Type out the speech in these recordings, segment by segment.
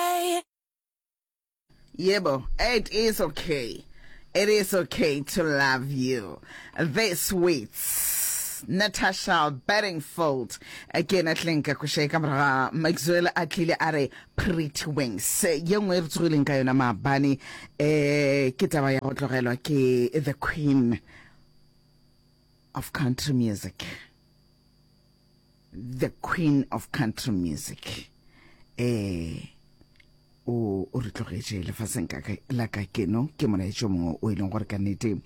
okay. Yebo, it is okay. It is okay to love you. This week's Natasha Bedingfield again at Linka Kushe Kamra Maxwell Atlile Are Pretty Wings. Ye nngwe e re tsogileng ka yona maabane eh ke taba ya go tlogelwa ke the queen of country music. The queen of country music eh o o re tlogetše lefaseng ka la ka keno ke molaetšo mongwe o e leng gore ka nnete um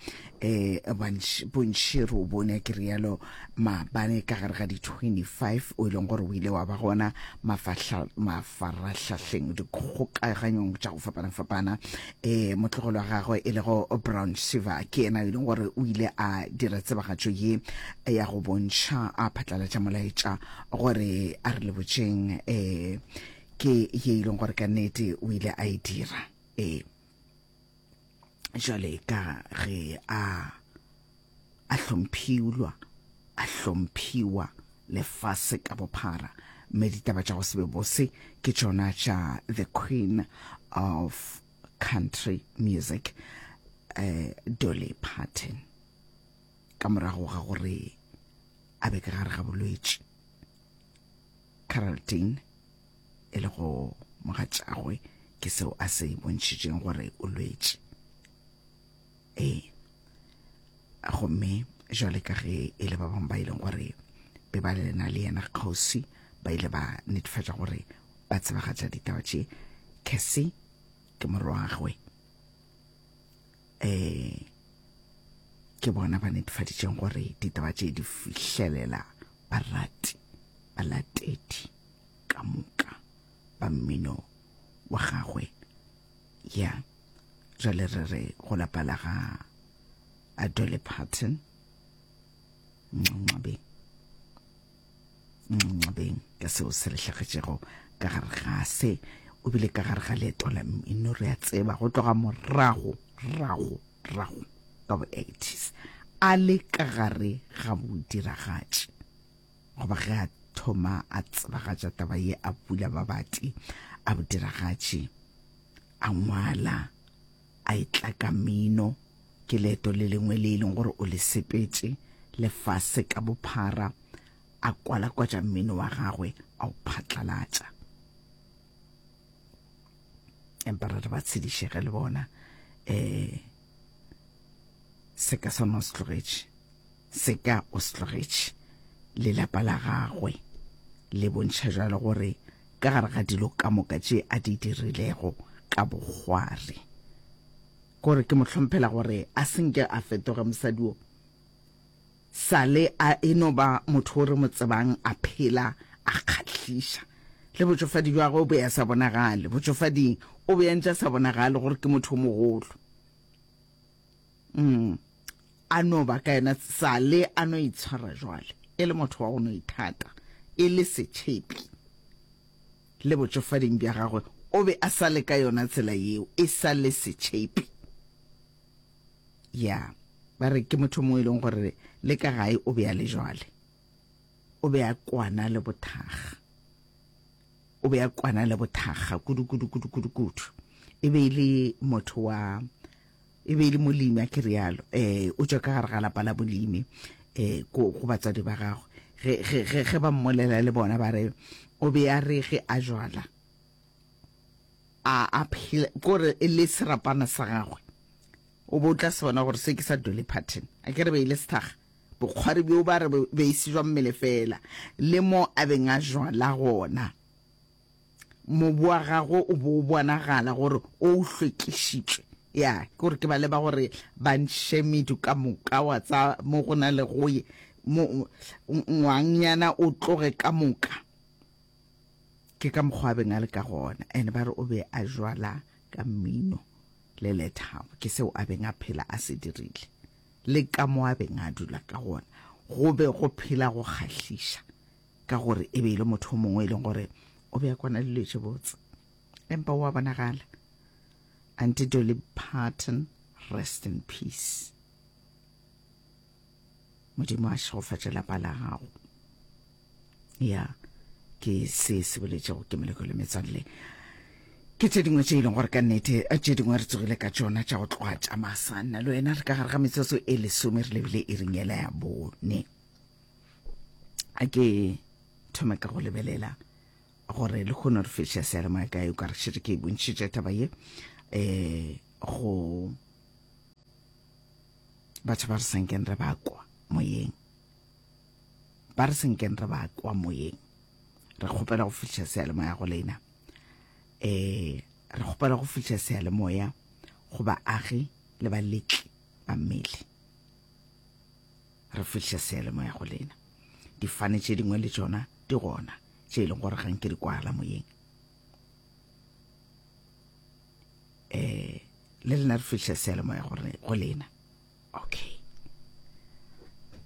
bontši re o bone ke rialo maabane ka gare ga di-25 o e leng gore o ile wa ba gona mafaratlhahleng dikgokaganyong tša go fapana-fapana Ee, motlogolo wa gagwe e lego Brown Shiva ke yena yo e leng gore o ile a dira tsebagatšo ye ya go bontšha a phatlalatša molaetša gore a re lebotšeng um ke ye e leng gore ka nnete o ile a e dira ee jale ka ge a a hlomphiulwa, a hlomphiwa lefase ka bophara, mme ditaba tša go se be bose ke tšona tša the queen of country music uh, Dolly Parton ka morago ga gore a be ka gare ga bolwetši Caraldine e le go mogatšagwe ke seo a se bontšhitšeng gore o lwetše ee gomme jwale ka ge e le ba bangwe ba e leng gore be ba lena le yena kgosi ba ile ba netefatša gore ba tsebagatša ditaba tše kesi ke morwagwe um ke bona ba netefaditšeng gore ditaba tše di fihlelela barati balatedi ka moka ba mmino wa gagwe ya jale re re go lapa la ga adole patton nxabeng nxabeng ka seo se re hlagetšego ka gare ga se o bile ka gare ga leeto la mmino re a tseba go tloga morago rago rago ka bo-80s a le ka gare ga bodiragatši Goba ge a thoma a tsebagatša taba ye a pula babati a bodiragatši, a ngwala, a e tlaka mino, ke leeto le lengwe le e leng gore o le sepetše, lefase ka bophara, a kwalakwatša mmino wa gagwe a o phatlalatša. Empa re re ba tshedišege le bona, um seka sa nwa se tlogetše. Se ka o se tlogetše le lapa la gagwe, le bontšha jalo gore ka gare ga dilo ka moka tše a di dirilego ka bogwari gore ke mo hlomphela gore a senke a fetoga mosadi wo sale a e no ba motho o re mo tsebang a phela a kgahliša le botšofadi jwa gagwe o be ya sa bonagale botšofading o be ya ntša sa bonagale gore ke motho o mogolo Mm. A no ba ka yena sale a no itshwara jwale, e le motho wa go no ithata, e le setšhepi. Le botšofading bja gagwe o be a sa le ka yona tsela yeo, e sa le setšhepi. Ya, ba re ke motho mo e leng gore le ka gae o be a le jwale. O be a kwana le bothaga. O be a kwana le bothaga kudu kudu kudu kudu kudu. E be e le motho wa e be e le molimi a ke rialo eh o tšwa ka gare ga lapa la molimi eh go batswadi ba gagwe ge ge ge ge ba mmolela le bona ba re o be a re ge a jwala a a phela gore e le serapana sa gagwe o bo tla se bona gore se ke sa dole pattern a ke re be ile sethaga bokgwari bjo ba re be e se jwa mmele fela le mo a beng a jwala gona mobu wa gagwe o bo o bonagala gore o o hlwekišitšwe ya ke gore ke ba leba gore ba ntšhe medu ka moka wa tsa mo go na le go ye ngwangyana o tloge ka moka ke ka mokgwa a beng a le ka gona and ba re o be a jwala ka mmino le lethabo ke seo a beng a phela a se dirile le ka mo a beng a dula ka gona go be go phela go kgahliša ka gore e be e le motho o mongwe e leng gore o be a kwana dilo tše botse empa o a bonagala anti dolly parton rest in peace modimo a šegofatše lapa la gago ya ke se se boletšego ke meleko le metswalle ke tše dingwe tše e leng gore ka nnete eh, tše dingwe re tsogile ka tšona tša go tloga tša masanna le wena re ka gare ga metsotso e lesome re lebile e ringela ya bone a ke thome ka go lebelela gore le kgone re fešha seyalemoya ka yo ka re šetse ke e bontšhitše taba ye um go batho ba re senkeng re ba kwa moyeng ba re senkeng re ba kwa moyeng re kgopela go fihla seyalemoya go lena um re kgopela go fihla seyalemoya go baagi le baletli ba mmele Re fihliša seyalemoya go lena. Difane tše dingwe le tšona di gona, tše e leng gore ga nke di kwala moyeng. Eh, le lena re fihliša seyalemoya gore go lena. Okay.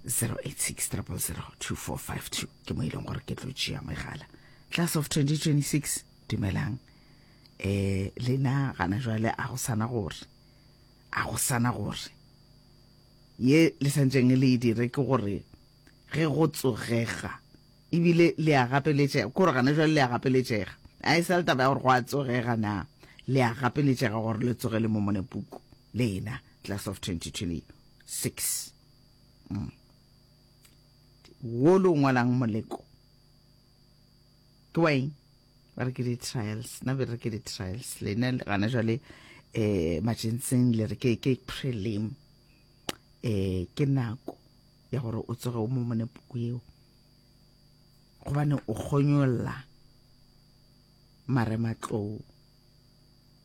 086 000 2452 ke mo e leng gore ke tlo tšea megala class of 2026 dumelang eh lena gana jwale a go sana gore a go sana gore Ye le santšeng le e dire ke gore ge go tsogega ebile le a gapeletšega, kore gana jwale le a gapeletšega, a e sa le taba ya gore go a tsogega na, le a gapeletšega gore le tsoge le Momone Puku le ena, Class of 2026. Mm. Wo lo ngwalang moleko. ke wa eng ba re ke di-trials na be re ke di-trials lena gana jale um majenseng le re ke ke prelim um ke nako ya gore o tsoge o mo mone puku eo gobane o kgonyolla marematlou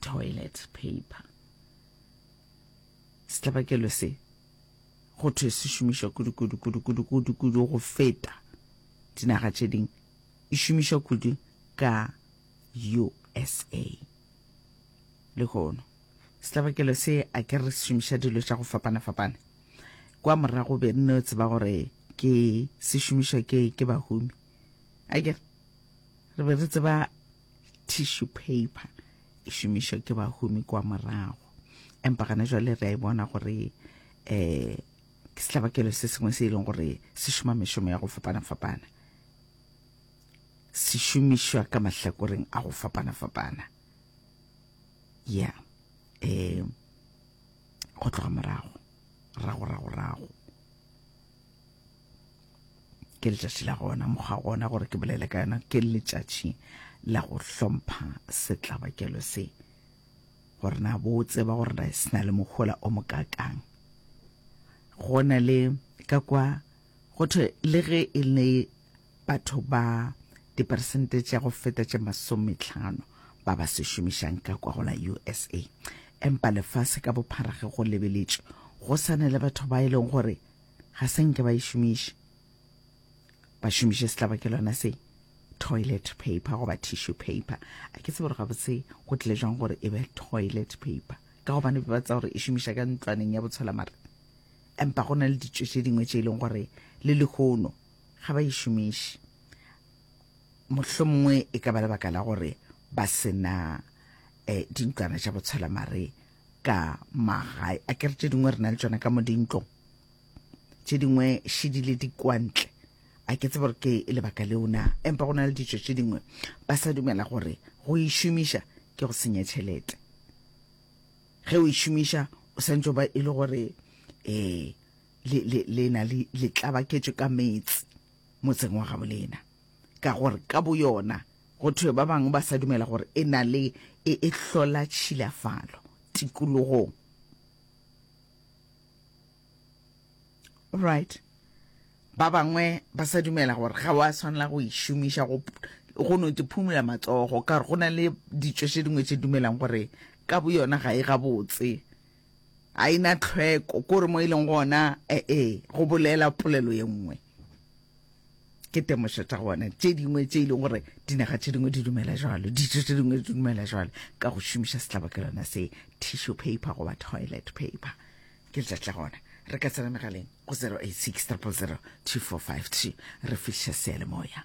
toilet paper setlabakelo se go thwe se šomišwa kudu-kudu-kudu-kudu-kudu-kudu go feta dinaga tše ding e šomišwa kudu ka usa lehono setlabakelo se a ke re se šomiša dilo tša go fapana-fapana kwa morago be nne o tseba gore ke se šomišwa ke ke bahumi a ke re be re tseba tissue paper e šomišwa ke bahumi kwa morago empa gana jwale re a e bona gore um ke setlabakelo se sengwe se e leng gore se šoma mešomo ya go fapana-fapana se šomišwa ka mahlakoreng a go fapana-fapana ya um go tloga morago rago rago rago ke letšatši la gona mokgwa gona gore ke bolele ka yona ke letšatši la go hlompha setlabakelo se gore na bo tseba gore na se na le mohola o mokakang go na le ka kwa go thwe le ge e le batho ba diperesente tša go feta tše masometlhano ba ba se šomišang ka kwa go la usa empa lefase ka bophara ge go lebeletšwe go sane le batho ba e leng gore ga se nke ba e šomiše ba šomiše setlabakelwana se toilet paper goba tissue paper a ke tsebe gore gabotse go tlile jwang gore e be toilet paper ka gobane ba tsa gore e šomiša ka ntlwaneng ya botshola mare empa go na le ditso tše dingwe tše e leng gore le lehono ga ba e šomiše mohlho mongwe e ka ba lebaka la gore ba sena um eh, dintlwana tša botshola mare ka magae a kere tše dingwe re na le tsone ka mo dintlong tše dingwe šedile di kwantle a ke tsebe gore ke lebaka leo na empa go na le ditso tše dingwe ba sa dumela gore go e šomiša ke go senya tšhelete ge o e šomiša o santse ba e le gore um le na le tlabaketso ka metse motseng wa gabolena ka gore ka boyona Go thwe ba bangwe ba sa dumela gore e na le e e hlola tšhilafalo tikologong. Right. Ba bangwe ba sa dumela gore ga wa swanela go e šomiša go go no te phumula matsogo ka gore go na le ditšo tše dingwe tše dumelang gore ka bo yona ga e gabotse a ina tlhweko kore mo e leng gona ee go bolela polelo ye nngwe ke temošo tša gona tše dingwe tše e leng gore dinaga tše dingwe di dumela jalo ditso tše dingwe di dumela jalo ka go šomiša setlabakelwana se tissue paper goba toilet paper ke letšatši la gona re ka tsena megaleng go 086 000 2453 re fihliša sealemoya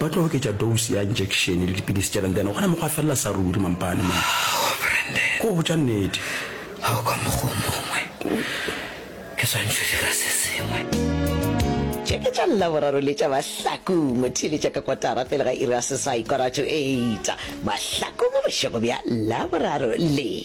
Ba tlo oketša dose ya injection le dipidisi tša Brendane gona mo gwa felela sa ruri mampane mo. Oh Brendane. Ko botša nnete. Ga o ka mokgwa o mongwe. Ke swantšho dira se sengwe. Tše ke tša Laboraro le tša Mahlaku. Mo theeletša ka kotara pele ga iri ya seswai, quarter to eight, Mahlaku mo bošego bja Laboraro le.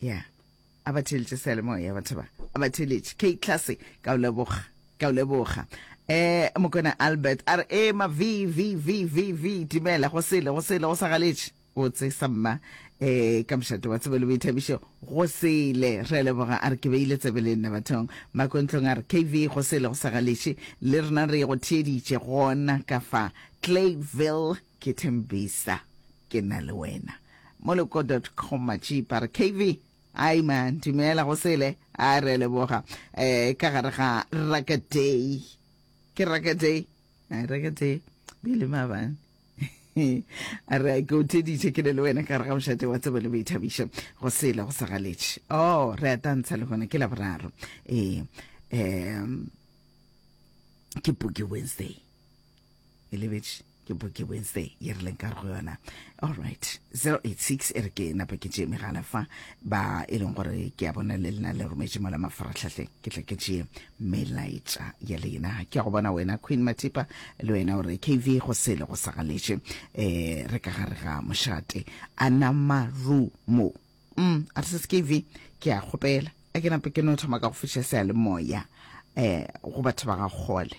ya a ba theletše seyalemoya batho ba a ba theletše k class ka o leboga ka o leboga eh mokona albert a re e ma v v v v v timela go sele go sele go sa galetše o tse sa mma eh ka mošate wa tsebe le boithabišo go sele re leboga a re ke beile tsebe le nna bathong makontlong a re kv go sele go sa galetše le rena re go theeditše gona ka fa clayville Ke Thembisa, ke na le wena. Moloko dot com Matšipa re KV, Hi man, dumela go sele. A re leboga. Eh, ka gare ga Raka Day. Ke Raka Day? A Raka Day. Bile mabane. a re ke o theditše ke le le wena ka gare ga mošate wa tsebo le boithabišo go sele go sa galetše o oh, re a tantsha le gona ke la boraro ee um ke puke wednesday e lebetše ke boke wednesday ye re leng ka go yona all right 086 e re ke napa ke tšee megala fa ba e leng gore ke a bona le lena le rometše mola mafaratlhatlheng ke tla ke tšee melaetša ya lena ke ya go bona wena queen matipa le wena gore kv go sele go sagaletše um eh, re ka gare ga mošate anamarumo mm a re se skv ke a kgopela a ke nape ke no thoma ka go fiša seya le moya um eh, go batho ba ga kgole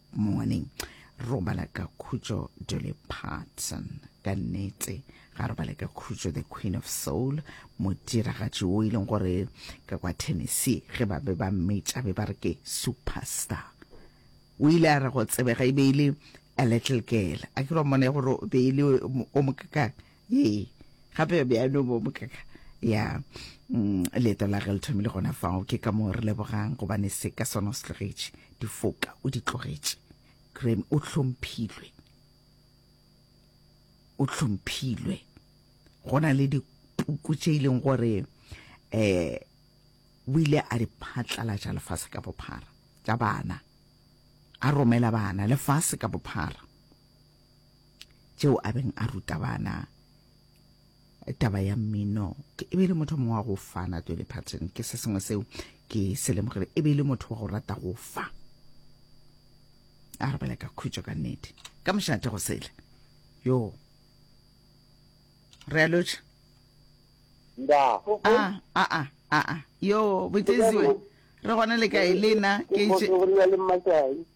Morning. Robala ka khutšo Dolly Parton. Ka nnete, ga robale ka khutšo The Queen of Soul, modiragatši o e leng gore ka kwa Tennessee ge ba be ba mmetša be ba re ke superstar. O ile a re go tsebega e be e le a little girl. A ke ra mmona ya gore be e le o mokakang. ee gape be a no bo bokaka ya mm, leeto la ge le thomile gona fao ke ka moo re lebogang gobane se ka sona o se tlogetše difoka o di tlogetše graham o hlomphilwe o hlomphilwe go na le dipuku tše e leng gore um o ile a di phatlalatša lefase ka bophara tša bana a romela bana lefase ka bophara tšeo a beng a ruta bana taba ya mmino e be e le motho mongwe wa go fana Dolly Parton ke se sengwe seo ke se lemogile e be e le motho wa go rata go fa a re bela ka khutšo ka nnete ka mošate go sele yo re a lotšha a a a a yo botesiwe re gona le kae le nna ke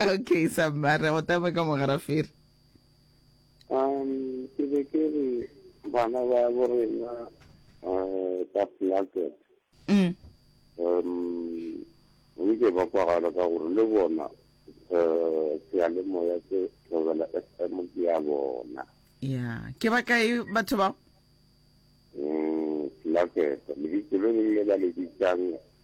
Okay, Samara, go tama ka mogarafere. Um, ke be ke re bana ba bo rena eh, ba placket. Mm. Um, nke ba kwagala ka gore le bona eh, seyalemoya se tlogela FM ke ya bona. Ya, ke ba kae batho bao? Mm, placket. Lebitso le leng le ba le bitsang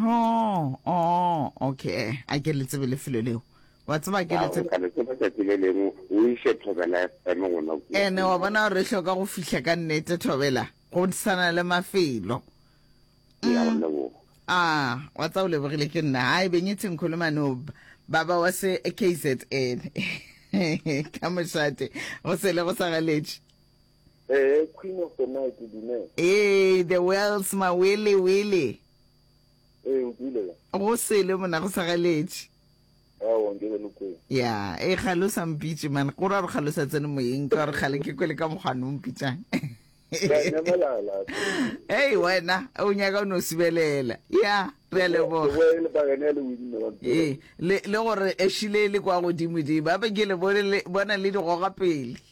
Oh, oh, okay. A ke le tsebe lefelo leo. Wa tseba ke le tsebe. Ka le tseba tsatsi le lengwe o ise thobela eme gona go. Ene wa bona re hloka go fihla ka nnete thobela go tsana le mafelo. Ya go mm. leboga. Ah, wa tsa o lebogile ke nna. Hayi benyitsi ngikhuluma no baba wase KZN. Ka moshate go sele go sa galetše. Ee, Queen of the Night, dumela. Ee, The Wells, Mawele Wele. Ee, o dule ya. Go sele mona, go sa galetše. Aowa, nke be le kwele. Ya, ee, kgale o sa mpitše, man. Gore a re kgale o sa tsene moyeng, ka gore kgale ke kwele ka mokgwane o mpitšang. Ka nyamalala. Hei, wena, o nyaka o no sibelela. Ya, re a leboga. Ke boele ba gene le winne wa mpela. Ee, le, le gore ešile le kwa godimo di, ba be ke le bone le, bona le di goga pele.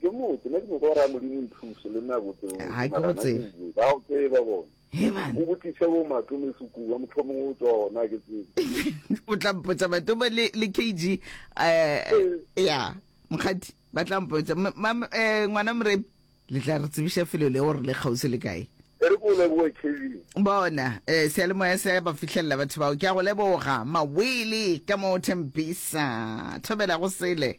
ke motse ne ke nyoko gore a modimo ithuse le nna botse ga ke go tsebe ba o tseba bona o botlise bo matome sekoa motho mongwe o tswa ona ke tsebe o tla mpotsa matome le le kg um ya mokgadi ba tla mpotsa eh, ngwana moremi le tla re tsebiša felo le gore le kgausi le kae re ko leboe kevin bona um sealemoya se ba fitlhelela batho bao ke a go leboga mawele ka mo thembisa thobela go sele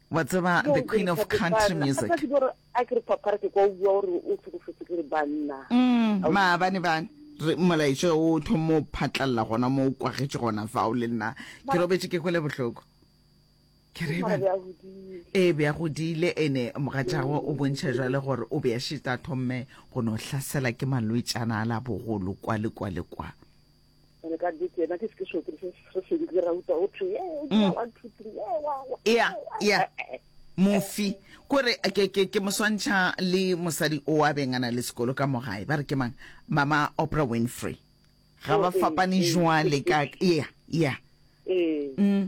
Wa tseba the queen of country music. Ke gore a ke re papara ke kwa o bua gore o tlhokofetse ke re banna. Mm, maabane bane. Re molaetša o thomo phatlalla gona mo o kwagetše gona fao le nna. Ke robetše ke kwele bohloko. Ke re ba. E be a godile ene mogatšago o bontšha jwale gore o be a šita thomme go no hlasela ke malwetšana a la bogolo kwa le kwa le kwa. re ka di tsena ke se so se se se di ra uta o thwe ye o dira mm. one two three ye wa wa ya ya mofi kore ke ke ke moswantšha le mosadi o a bengana le sekolo ka mogae ba re ke mang mama opera winfrey ga ba oh, eh, fapane eh, jwale eh, ka ya ya mm.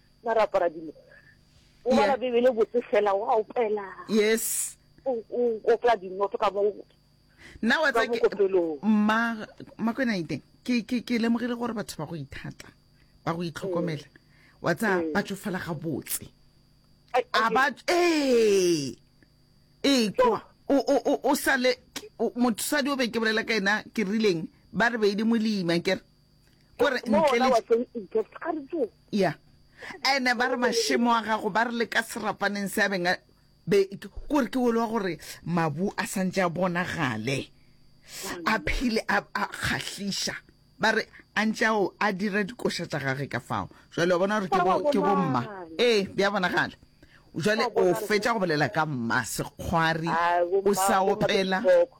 na ra apara dilo o bala bebele botse fela wa opela yes o opela dinoto ka mo nna wa tsa mma makwena iteng ke ke ke lemogile gore batho ba go ithata ba go itlhokomela mm. wa tsa mm. ba tsofala ga botse a ba ee ee kwa o o o sale motsadi o be ke bolela ka ena ke rileng ba re beile molima kere o re Mo ntle ona le wa teng in gift a re tso. ya ene ba re mašemo a gago ba re le ka serapaneng se a beng a be ke gore ke olwa gore mabu a santse a bonagale a phile a a kgahliša ba re a ntse ao a dira dikoša tša gage ka fao jwale wa bona gore ke bo ke bo mma ee bja bonagala jwale o fetša go bolela ka mma sekgwari Ah, bo o mma, sa bo mma opela bohloko.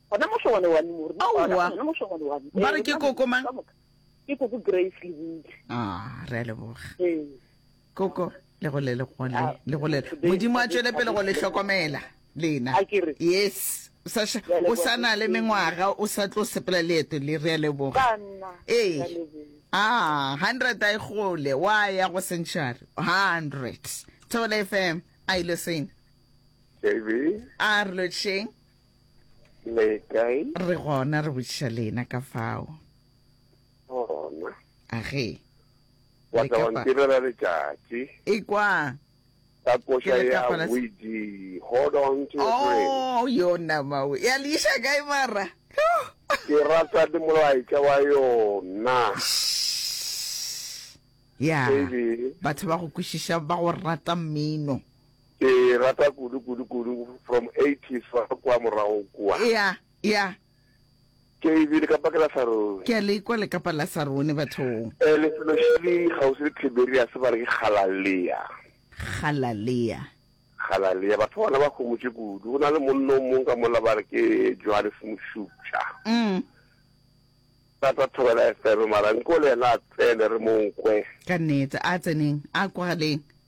Gona mošo wa lewani mo re no kwana. Aowa. Gona mošo wa lewani. Ba re ke koko mang? Ka moka. Ke koko Grace Lebudi. Ah, re a leboga. Ee. Koko, le gole le gole. Ah, Le gole. today- Modimo a tšwele pele go le hlokomela lena. A ke re. Yes. O sa ša- Re a leboga. o sa na le mengwaga, o sa tlo sepela leeto le re a leboga. Ka nna. Ee. Ka leboga. Ah, 100 a e gole, wa ya go century. 100. Thobela FM, a ile sena. Davy, A re lotšheng. le kae re gona re botšiša lena ka fao gona a ge wa tla wa ntirela letšatši ekwa ka koša ya widi hold on to your brain oh yo nama we ya le iša kae mara ke rata le molaetša wa yona ya batho ba go kwešiša ba go rata mmino Ke e rata kudu kudu kudu from eighties fa kwa morago kua. Ea, ea. Ke e bile ka pakela sa rone. Ke a le kwa le kapa la sa rone bathong. Eh, lefelo šele kgauswi le Tiberiase ba re ke Galalea. Galalea. Galalea. Batho ba bona ba homotše kudu. Go na le monno o mong ka mola ba re ke Johannes Mošupša. Mm. Tata thobela FM mara nko le yena a tsene re mo nkwe. Ka nnete, a tseneng, a kwagaleng.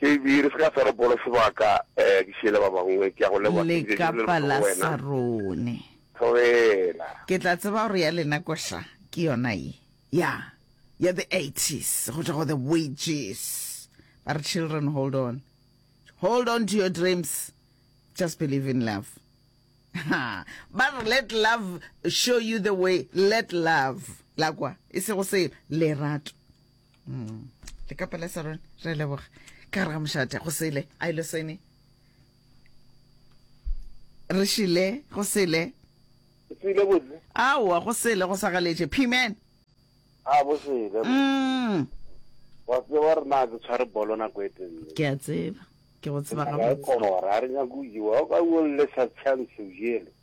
JB, Re se ka swara polo sebaka, eh, ke šiele ba bangwe, ke a go leboga, ke bile ke bolele bohloko go wena. Lekapalasarone. Tlogela. Ke tla tseba gore ya lena koša ke yona ye, ya, ya the eighties, go tšwa go the wages. Ba re, children, hold on. Hold on to your dreams. Just believe in love. Ha, ba re, let love show you the way, let love, la kwa, e sego selo, lerato. mm. le ka pela sarone re leboga ka gare ga mošate go sele a ile sene re šile go sele sile botse aowa go sele go sagaletše piman a bo sele mm. wa tseba re na ke tshware bolo nako e tenne ke a tseba ke go tseba ga botse kora a re nyako iwa o ka o le sa chance o jele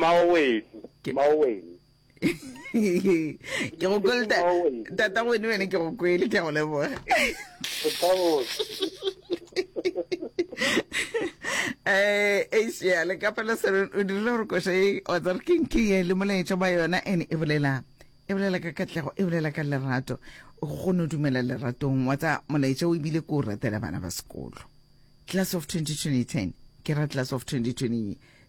maowedi maowedi ke go kwele tata wene wene ke go kwele ke go leboga eh asia le ka pela sere o dirile gore koša e wa tsare ke nke ye le molaetša ba yona ene e bolela e bolela ka katlego e bolela ka lerato o kgone o dumela leratong wa tsa molaetša o ebile ko o ratela bana ba sekolo class of 2020 ke ra class of 2020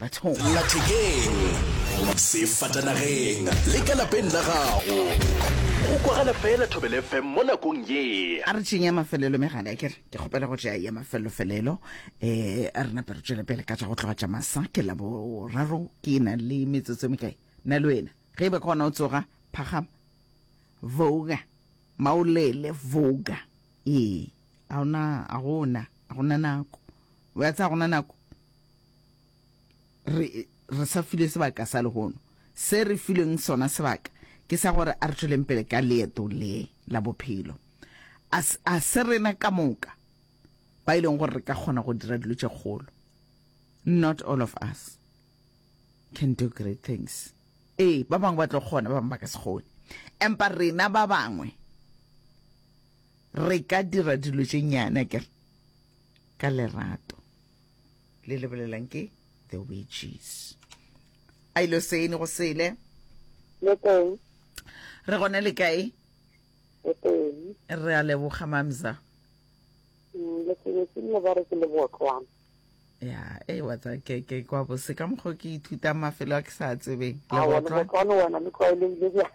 bathong. Lathekeng, sefatanageng le ka lapeng la gago. Go kwagala fela Thobela FM mo nakong ye. A re tšeeng ya mafelelo megala ke re ke kgopela go tšea ya mafelofelelo um a re nape re tšwele pele ka tša go tloga tša masa ke la boraro ke na le metsotso e mekae na le wena ge e be ka ona o tsoga phagama voga maolele voga ee a ona a gona a gona nako wa tsa gona nako re, re sa filwe sebaka sa lehono. Se re filweng sona sebaka ke sa gore a re tšweleng pele ka leeto le la bophelo. A, a se rena ka moka ba e leng gore re ka kgona go dira dilo tše kgolo. Not all of us can do great things. Ee, ba bangwe ba tlo kgona, ba bangwe ba ka se kgone. Empa rena ba bangwe re ka dira dilo tše nyane, akere, ka lerato. le lebelelang ke the witches a ilo sene go sele le teng re gone le kae le teng re a leboga mamza mm, le sebetse le ba re ke le botlwana ya e wa tsa ke ke kwa bo se ka mokgo ke ithuta mafelo a ke sa tsebeng le botlwana wena le tlwaelehile bjang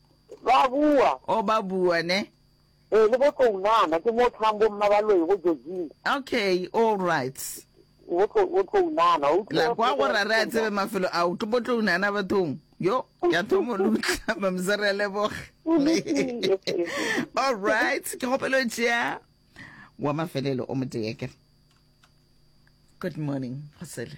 Ba bua. Oh, ba bua, ne? Ee, le bo Tlounana, ke mo thang bo Mmabaloi go Georgina. Okay, all right. Bo Tlo, bo Tlounana, o La kwa go ra re a tsebe mafelo a o tlo bo Tlounana bathong. Yo, ya thomo lutla, mamsa re a leboga. All right, ke kgopelo tšea wa mafelelo o motee ke. Good morning, Gosele.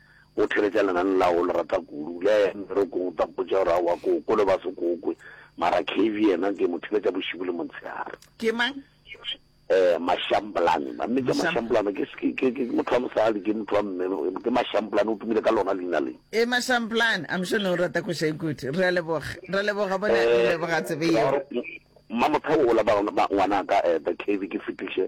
O theletša lenane la gago o le rata kudu. Le a ya mmerekong o tla mpotša gore aowa ke o kole ba se ko kwe. Mara Kevy yena ke mo theletša bošibu le montshehare. Ke mang? Eh, Mashamblane. Ba mmetša Mashamblane. Ke, ke, ke, ke motho wa mosadi, ke motho wa mme. Ke Mashamblane, o tumile ka lona leina le. Eh, Mashamblane. I'm sure ne o rata koša e kudu. Re a leboga. Re a leboga bona, re leboga tsebe yeo. Eh, Mmamothabo o la ba, ba ngwanaka, eh, the Kevy ke fetiše.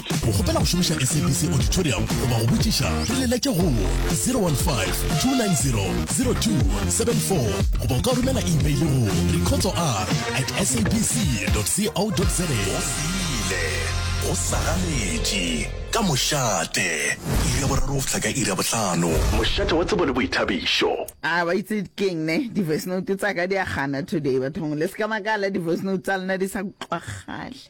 O kgopela go šomiša SABC Auditorium goba go botšiša? Re leletše go 015-290-0274 goba o ka romela imeile go recordsor at sabc.co.za. Go sile, go sagaletše, ka mošate, iri ya boraro go fihla ka iri ya bohlano. Mošate wa tsebo le boithabišo. A ba itse keng ne di voice note tsa ka di a gana today bathong le se ka makala di voice note tsa lena di sa utlwagale.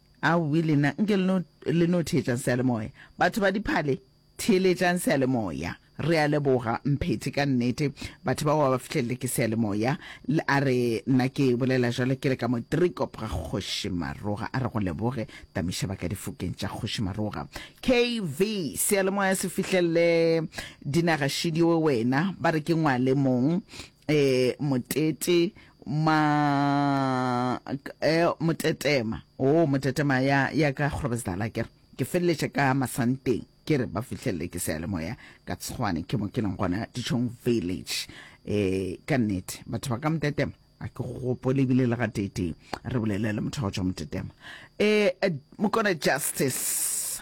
Aowii lena nke le no le no theetšang seyalemoya batho ba diphale theeletšang seyalemoya re a leboga Mphethi ka nnete batho bao ba ba fihlelele ke seyalemoya le a re nna ke bolela jalo ke le ka mo Driekop ga kgoši Maroga a re go leboge Tamiša ba ka difokeng tša kgoši Maroga KV seyalemoya se fihlelele dinaga šidi we wena ba re ke ngwale mong eh motete ma eh motetema oh motetema ya ya ka grobesdala ke ke feleletše ka masanteng ke re ba fihlelele ke sealemoya ka tshwane ke mo ke leng gona dichong village eh ka nnete batho ba ka motetema a ke gopole ebile le gateteng re bolele le motho wa go tswa motetema eh mokone justice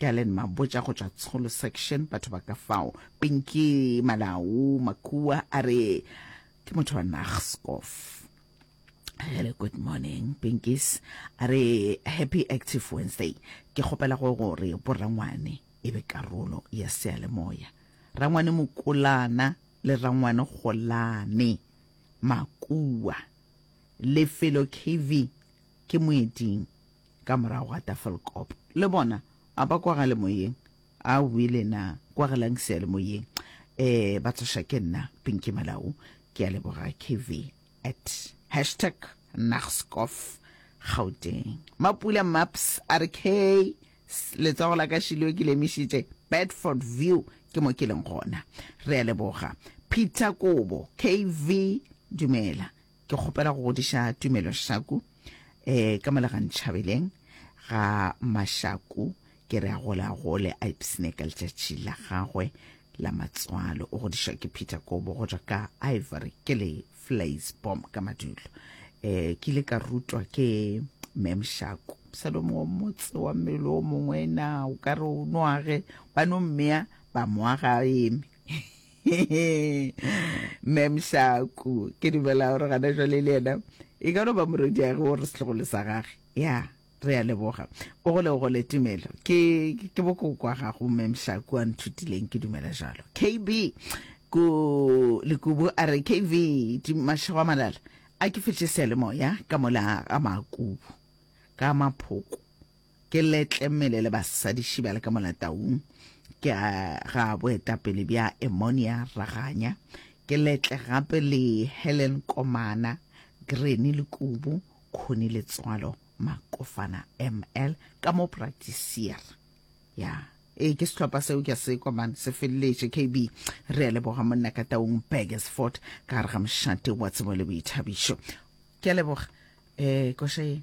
Galen Mabotja go tšwa Tsholo Section, batho ba ka fao. Pinky Malau Makua a re ke motho wa Nagskof. Hello, good morning, Pinkies. A re happy active Wednesday. Ke kgopela go gore borangwane e be karolo ya sealemoya. Rangwane Mokolana le Rangwane Golane Makua. Lefelo KV ke moeding. Ka morago ga Tafelkop, le bona, a ba kwagale moyeng? Awi le na, kwagalang sealemoyeng. Ee, ba tsoša ke nna, Pinky Malau. Ke a leboga, KV. At hashtag Nagscof Gauteng. Mapula Maps a re K, letsogo la ka Shilwe ke lemišitše Bedford View ke mo ke leng gona. Re a leboga. Peter Kobo, KV, dumela. Ke kgopela go godiša Tumelo Shaku eh, ka mo Legantšhabeleng ga Mashaku, ke re a gole a gole, a ipsne ka letšatši la gagwe la matswalo. O godišwa ke Peter Kobo go tšwa ka Ivory, ke le Flays Bomb ka Madulo. Eh, ke ile ka rutwa ke Mem Shaku. Salomo wa motse wa mmele o mongwe na o ka re o noage ba no mmea ba moaga a eme mem shaku ke dumela gore gana jwale le yena e ka no ba morwediage o re setlogolo sa gage ya re a leboga o gole o gole tumelo ke ke bokokwa gago mem shaku a nthutileng ke dumela jalo kb ku lekubu a re kv mašego a malala a ke fetše sealemoya ka mola ga makubu ka maphoko Ke letle mele le basadiši ba le ka molataung, ke a ga boetapele bja Emonia Raganya, ke letle gape le Helen Komana, Granny Lekubu, Khoni Letswalo, Makofana ML, ka mo Practisier. Ya, ee ke sehlopha seo ke a se kwa man, se feleletše KB. Re a leboga monna ka taung Burgersford ka gare ga mošate wa tsebo le boithabišo. Ke a leboga. Eh, koša ye.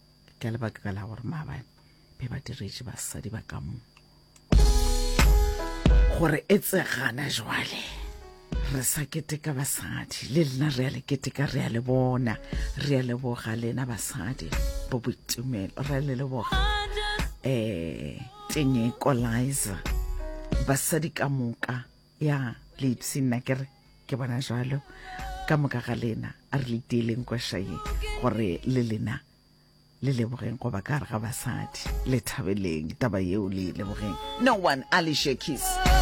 ka lebaka la gore maabane be ba diretše basadi ba ka mo gore e tsegana jwale re sa keteka basadi le lena re ya le keteka re ya le bona re ya leboga lena basadi bo boitumelo re ya le leboga um tenyeko liza basadi ka moka ya leipsi nna ke re ke bona jalo ka moka ga lena a re le tieleng kwešaye gore le lena le lebogeng goba ka gare ga basadi le thabeleng taba yeo le e lebogeng no one ali shakis